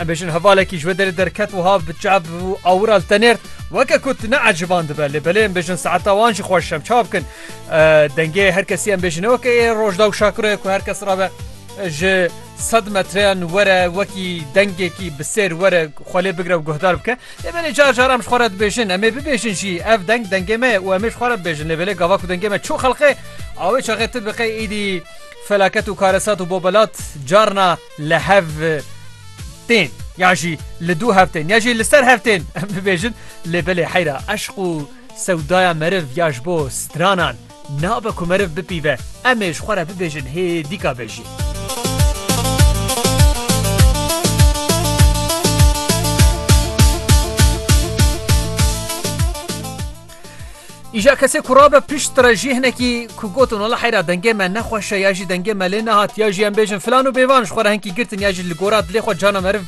Em bêjin hevalekî ji wê derê derket wiha bi çap û awira li te nêrt weke ku tu neeciban dibe lê belê em bêjin saeta wan jî xweş em çav bikin dengê her kesî em bêjin weke ê rojda û şakirê ku her kes rabe ji sed metreyan were wekî dengekî bi sêr were xwelê bigre û guhdar bike lê belê car car em ji xwe re dibêjin em ê bibêjin jî ev deng dengê me û em ê ji xwe re bibêjin lê belê gava ku dengê me çû xelqê awê çaxê tu biqê êdî felaket û karesat û bobelat carna li hev-tên ya jî li dû hev-tên ya jî li ser hev-tên em bibêjin lê belê heyra eşq û sewdaya meriv ya ji bo stranan nabe ku meriv bipîve em ê ji xwe re bibêjin hê dîka be jî. Îja kesê ku rabe pişt re jî hinekî ku gotin wala heyra dengê me nexweşe ya jî dengê me lê nehat ya jî em bêjin filan û bêvan ji xwe re hinkî girtin ya jî li gora dilê xwe cana meriv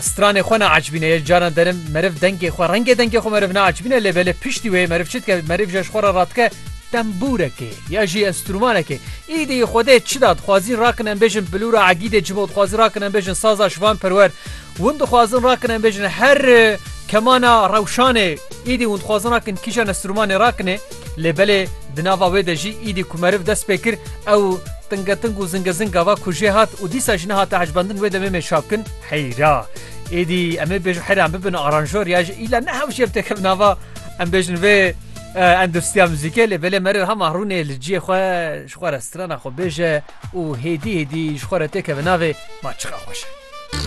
stranê xwe neacibîne yê cana derin meriv dengê xwe rengê dengê xwe meriv neacibîne lê belê piştî wê meriv çi dike meriv ji ji xwe re radike tembûrekê ya jî enstrûmanekê îdî xwedê çi da dixwazîn rakin em bêjin bilûra egîdê cimo dixwazîn rakin em bêjin saza şivan perwer Hûn dixwazin rakin em bêjin her kemana rewşanê îdî hûn dixwazin rakin kîja nesrûmanê rakinê lê belê di nava wê de jî îdî ku meriv dest pê kir ew tingeting û zingezing gava ku jê hat û dîsa jî nehate ecbendin wê demê mêj çap kin heyra îdî em ê bêjin heyra em bibin aranjor ya ji îla ne hewşê em têkevin nava em bêjin vê endûstriya muzîkê lê belê meriv hema rûnê li ciyê xwe ji xwe re strana xwe bêje û hêdî hêdî ji xwe re têkeve navê ma çiqa xweş e.